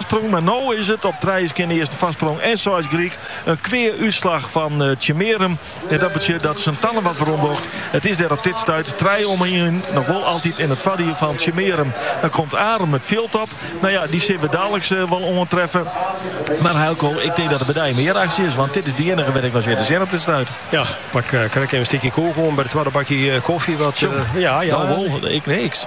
Foarsprong, mar no is it op trije skjinne earsten foarsprong en seis gelyk. In kwea útslach fan Tsjummearum. En dat betsjut dat Sint Anne wat weromdocht. It is dêr op dit stuit trije om ien noch wol altyd yn it foardiel fan Tsjummearum. Dan komt Arum it fjild op. No ja, dy sil we daliks wol oantreffe. Mar Eelko, ik tink dat der by dy mear aksje is, want dit is de iennige wêr't ik no sit te sjen op dit stuit. Ja, pak krekt even in stikje koek oan by de twadde bakje kofje. Wat, ja, ja. No wol, ik niks.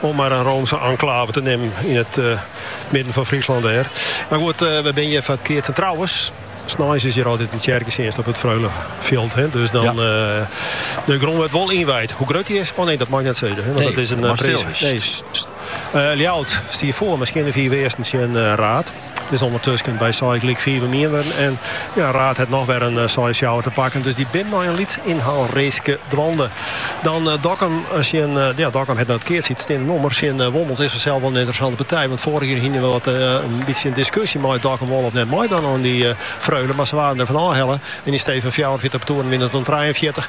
om mar in Roomske enklave te nimmen yn it midden fan Fryslân dêr. Mar goed, we binne hjir foar it keatsen. Trouwens, sneins is hjir altyd in tsjerketsjinst op it Freulefjild. Dus dan de grûn wurdt wol ynwijd. Hoe grut dy is? Oh nee, dat mei ik net sizze. Want dat is in prins. Ljouwert stie foar, mar skjinne fiif earsten tsjin Raerd. It is ondertusken by seis gelyk fiif om ien wurden en Raerd hat noch wer in seis-fjouwer te pakken. Dus dy binne mei in lyts ynhaalreeske dwaande. Dan Dokkum tsjin, ja Dokkum hat noch net keatst, it steande nommer tsjin Wommels is fansels wol in ynteressante partij. Want foarich jier hiene we wat in bytsje in diskusje mei Dokkum wol of net meidwaan oan dy Freule. Mar se waarden der fan ôfhelle en yn stee fan fjouwerenfjirtich partoeren wiene it der trijenfjirtich.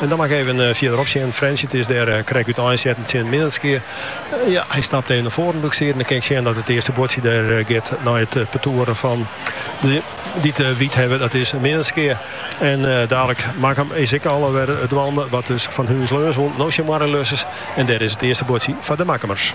En dan mei ik even fierder op sjen. Frjentsjer is dêr krek út einsetten tsjin Minnertsgea. Ja, hy stapt even nei foaren doe ik siet. Dan kin ik sjen dat it earste buordsje dêr giet nei it partoer fan de dy't de wyt hawwe. Dat is Minnertsgea. En dalik Makkum is ek al wer dwaande. Wat dus fan Húns-Leons wûn. No tsjin Moarre-Ljussens. En dêr is it earste buordsje foar de Makkumers.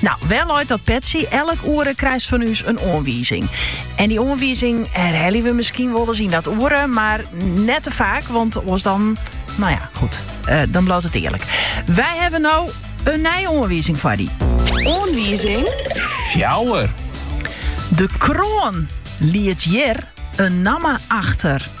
No, wêr leit dat petsje? Elk oere krijst fan ús in oanwizing. En dy oanwizing herhelje we miskien wolris yn dat oere, mar net te faak, want oars dan, no ja, goed, eh, dan bliuwt it earlik. Wy hawwe no in nije oanwizing foar dy. Oanwizing fjouwer. De kroan liet hjir in namme achter.